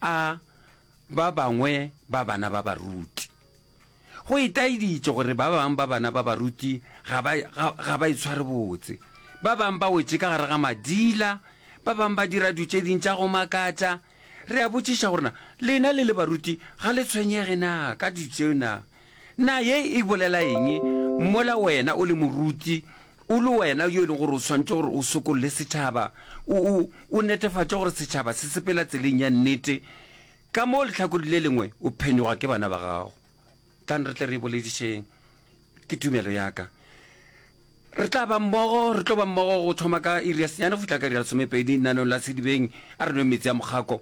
a ba bangwe ba bana ba baruti. Go itaeditše gore ba bangwe ba bana ba baruti ga ba, ga, ga ba itshware botse. Ba bangwe ba wetše ka gare ga madila, ba bangwe ba dira du tše ding tša go makatša. Re a botšiša gore na lena le le baruti ga le tshwenyege na ka du tšeo na? Na ye e bolela eng? Mola wena o le moruti, o le wena yo e lego gore o swanetše gore o sokolle setšhaba, o, o, o netefatše gore setšhaba se sepela tseleng ya nnete, ka mo lehlakoreng le lengwe o phenyogwa ke bana ba gago. Tlang re tle re e boledišeng. Ke tumelo ya ka. Re tla ba mmogo, re tlo ba mmogo go thoma ka iri ya senyane go fihla ka iri ya lesomepedi, lenanong la sedibeng. A re nweng meetse a mokgako.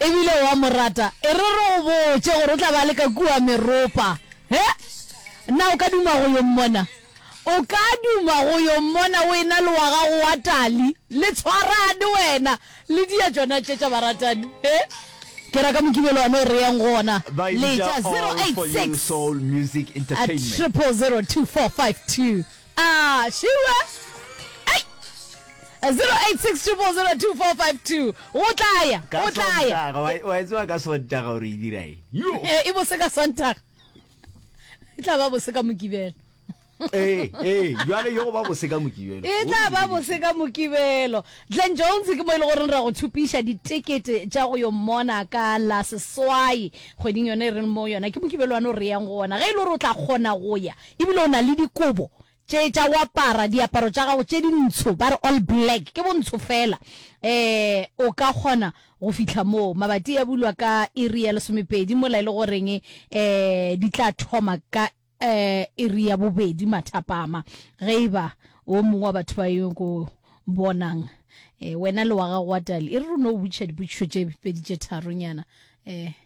E bile o a mo rata. E re re go botše gore o tla ba le ka kua meropa. He? Na o ka duma go yo mmona? O ka duma go yo mmona wena le wa gago wa tali. Le tshwarane wena le dia tšona tše tša baratani. He? Ke ra ka Mokibelo one o re yeng go ona. Ba e bitša All For You Soul Music Entertainment. Triple zero two four five two. Ah, sure. Hey! 0860002452. O tlaya, ka o tlaya. sontaga wa- wa e tseba ka sontaga gore e dira eng Yo! Eh, e bose ka Sontaga. E tla ba bose ka Mokibelo. ee ee jale yo go ba bose ka mokibelo E tla ba bose ka Mokibelo. Glen Jones ke mo e le gore ra go thupiša ditekete tša go yo mmona ka la seswai kgweding yone e reng mo yona ke Mokibelo wa no re yang go ona. Ge e le gore o tla kgona go ya E bile o na le dikobo tše tša go apara, diaparo tša gago tše dintsho, ba re all black, ke bontsho fela. Eh, o ka kgona go fihla moo. Mabati a bulwa ka iri ya lesomepedi, mola e le goreng eh di tla thoma ka eh iri ya bobedi mathapama. Ge e ba o mongwe wa batho ba yo ko bonang, eh wena le wa gago wa tali, e re r'o no botšiša dipotšišo tše pedi tše tharonyana. Eh.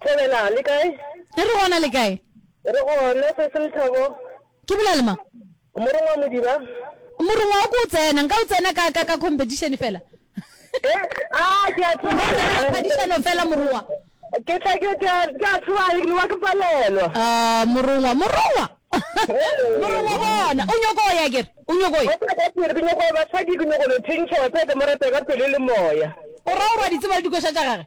Thobela, le kae? E re gona, le kae? Re gona, Sesi Lethabo. Ke bolela le mang? Morongwa Modiba. Morongwa wa ko o tsena, nka o tsena ka, ka, ka competition fela. Eh, ah, ke a tseba. Phadišano fela, Morongwa. Ke tla, ke tla, ke a tseba, ke wa ke palelwa. Ah, Morongwa, Morongwa. Morongwa bona, o nyoko o ya ke re, o nyoko o ya. Ka pele, ke nyoko basadi, ke nyoko lo thentšha, wa tseba ke mo rata ka pelo le moya. O ra o re wa di tseba le dikoša tša gage?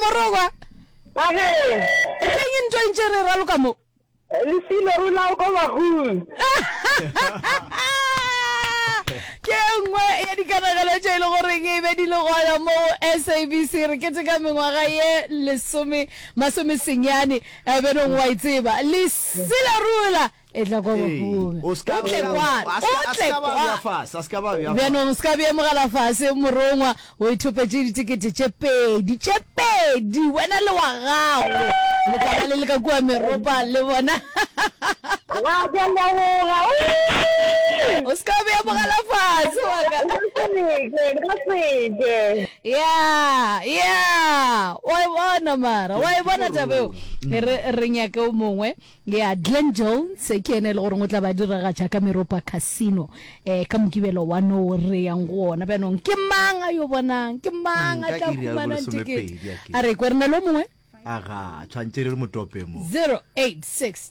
morogwa Bakeng. eng e ntwa ntše re raloka mo Lesilo re lao ko bagong. ke nngwe ya dikanagelo tše e le goreng e be di le gona mo sabc re keteka mengwaga ye lesome masomesenyane eh, benong wa e tseba leselarula Etla kwa bafung. O ska Otle bea- kwano, a ska- a otle ska ba kwa. bea fase, a ska ba bea fase. Bjanong o se ka bea mogala fase, morongwa. O ithopetše ditekete tše pedi, tše pedi, wena le wa gago. Letlala le le ka kua meropa le bona. Wa ka leboga. Ooh! O se ka bea mogala fase wa ka. Nka seke, nka seke. ya ya wa e bona mara wa e bona taba eo re re nyake o mongwe Ya Glen Jones ke yena e le goreng o tla ba diragatša ka Meropa Casino eh, ka Mokibelo wa no re yang go ona. Bjanong ke mang a yo bonang? Ke mang Mm, a ka tla iri ya humanang bolesome ticket? pedi, a ke. A re kwe re na le o mongwe? Aga, tshwantše re re motope mo. 086